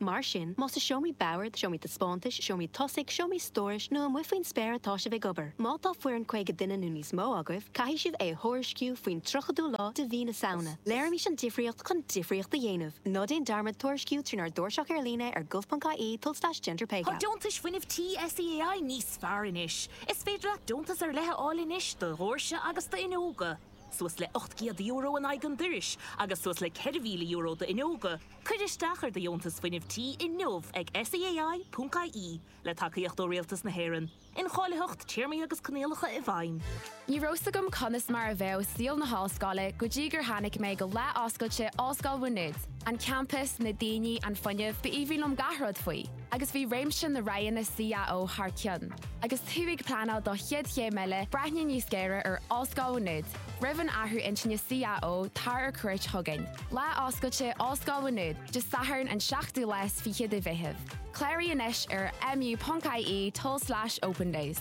Mar sin, más i seomraí boird, seomraí taispeántais, seomraí tosaigh, seomraí stórais nó amuigh faoin spéir atá sibh ag obair, má tá foireann 50 duine nó níos mó agaibh, caithfidh sibh é a thuairisciú faoin 30ú lá de mhí na Samhna. Léirímis an difríocht chun difríocht a dhéanamh. Ná déan dearmad tuairisciú trínár dtairseach ar líne ar gov.ie tulslais gender pay gap. Tá deontais fuinnimh tí SEAI níos fearr anois. Is féidir leat deontas ar leith a fháil anois do dhóirse agus d'fhuinneoga, suas le €800 in aghaidh an dorais agus suas le €4,000 d'fhuinneoga, Cuir isteach ar do dheontas fuinnimh tí inniu ag SEAI.ie le tacaíocht ó Rialtas na hÉireann, incháilitheacht téarmaí agus coinníollacha i bhfeidhm. Ní raibh a fhios agam conas mar a bheadh saol na hollscoile go dtí gur tháinig mé go lá oscailte Ollscoil Mhá Nuad, an campas, na daoine, an fuinneamh, b'aoibhinn liom gach rud faoi. agus bhí réimse na roghanna CAO thar cionn, agus tú ag pleanáil do chéad chéim eile, breathnaigh níos géire ar Ollscoil Mhá Nuad. Roimh an athrú intinne CAO, tar ar cuairt chugainn. Lá Oscailte Ollscoil Mhá Nuad, Dé Sathairn an 7ú lá is fiche de Mheitheamh. Cláraigh anois ar mu.ie tulslais opendays.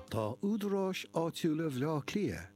Tá údaráis áitiúla Bhaile Átha Cliath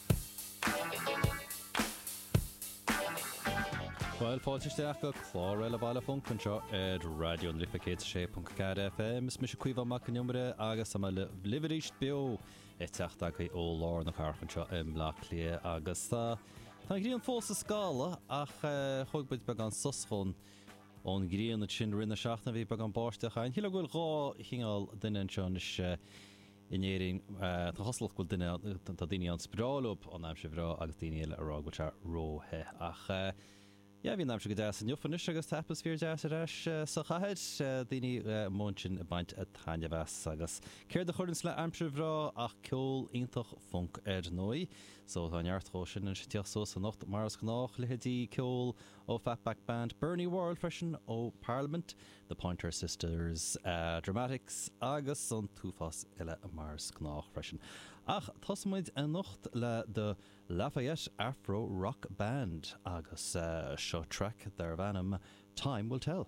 Bhuel, fáilte isteach go clár eile Baile an Funk anseo ar Raidió na Life 106.4 FM. Is mise Caomhán Mac an Iomaire agus tá mé libh arís beo ag teacht agaibh ó lár na cathrach anseo i mBleá Cliath agus tá tá an ghrian fós ag scalladh ach eh, thug muid beagán sos ón ghrian sin i rith na seachtaine bhí beagán báisteach. Cheap mé chuile go bhfuil dhá chineál duine anseo anois eh, in Éirinn, tá cosúlacht go bhfuil daoine ann, is breá leob an aimsir bhreá agus daoine eile ag rá go bhfuil sé ró-the. Ach yeah, bhí an aimsir go deas inniu anois agus tá atmaisféar deas ar ais sa chathair, daoine amuigh ansin ag baint taitneamh as. Agus céard a chuireanns le aimsir bhreá ach ceol iontach funk ar ndóigh. So tá neart dhó sin anois ag tíocht suas anocht mar is gnách, leithéidí ceol ó Fatback Band, Bernie Worrell freisin ó Parliament, The Pointer Sisters, Dramatics agus an t-uafás eile mar is gnách freisin. Ach tosóimid anocht le The Lafayette Afro Rock Band agus seo traic darb ainm Time Will Tell.